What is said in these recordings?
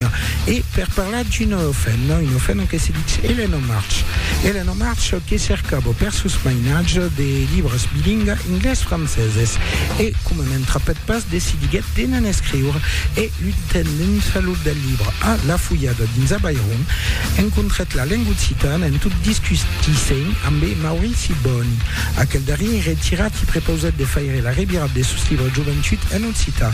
Catalonha e per parlar d'una ofena, una ofena que se ditz Elena March. Elena March que cercava per sos mainatges de libres bilingues inglés-franceses e, coma ne'n trapèt pas, decidiguèt de ne'n escriure e, lutent dins lo del libre a la fulhada dins Abairon, encontrèt la lenga occitana en tot discutissent ambe Maurici Boni. Aquel darrier, retirat, i prepausèt de faire la revirat de sos libres Joventut en Cita.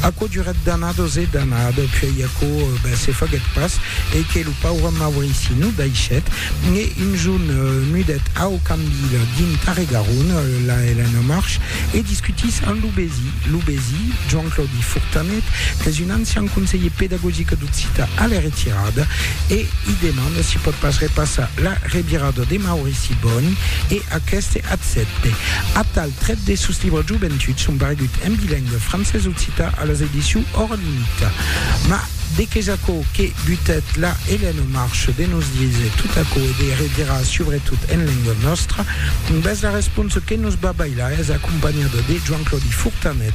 Aquò durèt d'annados e d'annados, puèi aquò se faguèt pas, e que lo paure Maurici nos daishèt, e un jorn mudèt au Cambil dins Tarregaron, la Elena March, e discutís amb lo Besi. Lo Besi, Joan Claudi Fortanet, qu'es un ancian conselhier pedagogic d'Occita a la retirada, e i demanda si pòt pas repassar la revirada de Maurici Bòni, e aqueste accèpte. Atal. Trèt de sos libres Joventuts son paregut en bilingüe francés-occitan a las edicions Hors Limite. Mas de qu'es aquò que butèt la Hélène au Marche de nos díser tot aquò e de redirar subretot en lenga nòstra? Bèth la responsa que nos va bailar es acompanhada de Joan-Claudi Fortanet